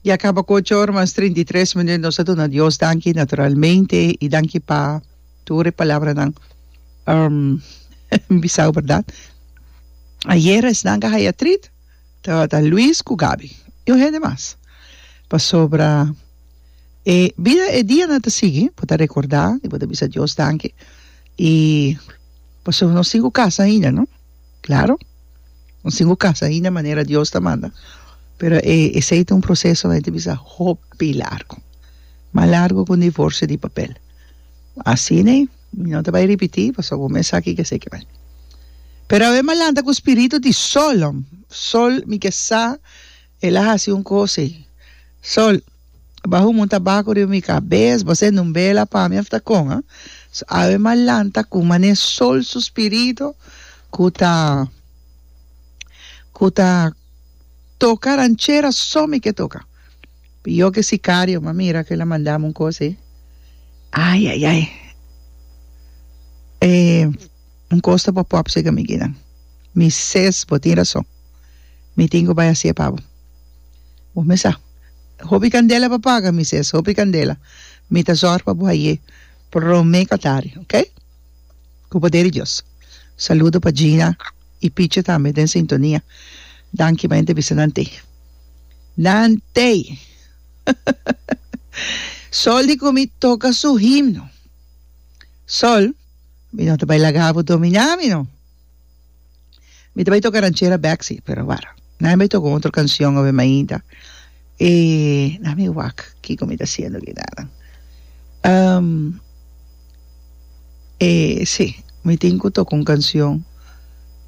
Ya kaba ku ocho ora mas trinta i tres minüt. Nos ta duna Dios danki naturalmente i danki pa tur e palabranan bisau, bèrdat. Ayera esnan ka haya trit, tabata Luis ku Gaby i un hende mas. Pasobra e bida, e dianan ta sigui, bo ta rekordá i bo ta bisa Dios danki. I pasobra nos tin ku kas ahinda, no. Claro. Nos tin cu casa ainda manera Dios ta manda, pero e esey ta un proceso hende bisa hopi largo. Mas largo cu un divorcio di papel. Asina mi no ta bay ripiti pasobra bo mes sa ki esey ki bay. Pero awe mi a lanta cu spiritu di solom, sol mi ke sa. El a hasi un kos ei. Sol, baha un monta baku riba mi kabes, bo ser un bela pa mi of ta kon, ha? So awe m'a lanta ku manera Sol su spiritu ku ta ku ta toka ranchera so mi ke toka. Pio ke sikario m'a mira ku el a manda mi un kos ei. Ai ai ai! E. Un kos ta pa pòp sega amigunan. Mi ses bo tin rason. Mi tin ku bai hasié pa bo. Bo mes sa. Hopi kandela pa paga, mi ses, hopi kandela. Mi ta zòrg pa bo ayé promé ku atari, ok? Ku poder di Dios. Saludo pa Gina i Pichi tambe den sintonia. Danki pa entevista nan tei. Nan tei! Sol di ku mi toka su himno. Sol. Mi no ta bai laga bo dominá mi no. Mi ta bai toka ranchera bèk si, pero wara. Nan a bai toka un otro kansion obe mainta. E nan a bai wak kiko mi ta hasiendo aki nannan. E si, mi tin ku toka un kansion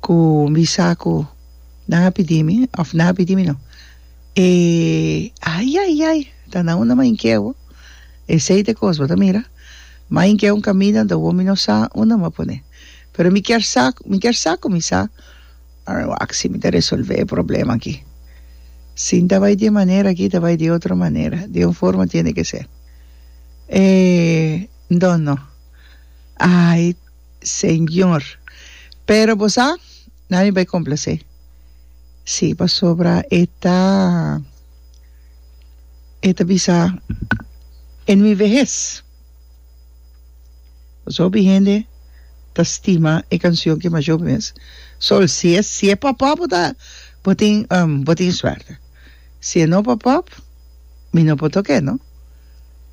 ku mi sa ku nan a pidi mi, òf nan a pidi mi no. E ayayay, ta na unda mainkeu. Esei ta e kos bo ta mira. Main ke un kaminda do wo mi no sa unda mi a pone pero mi kier sa mi kier sa ku mi sa a wak si mi ta resolve e problema aki si nta bai di e manera aki ta bai di e otro manera di un forma tiene ke ser e dono ai señor pero bo sa nan mi bai complase si pasobra e ta. E ta bisa, En mi vehes. Pasobra hopi hende ta stima e canción ki masho mes. So, si e, si e papá bo ta, bo tin, bo tin suerte. Si e no papá, mi no por toke, no?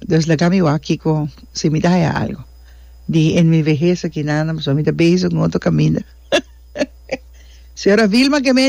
Dus laga mi wak kiko, si mi ta haya algo di en mi vehes aki nada, pasobra mi ta bezig un otro kaminda. Señora Vilma Gemein.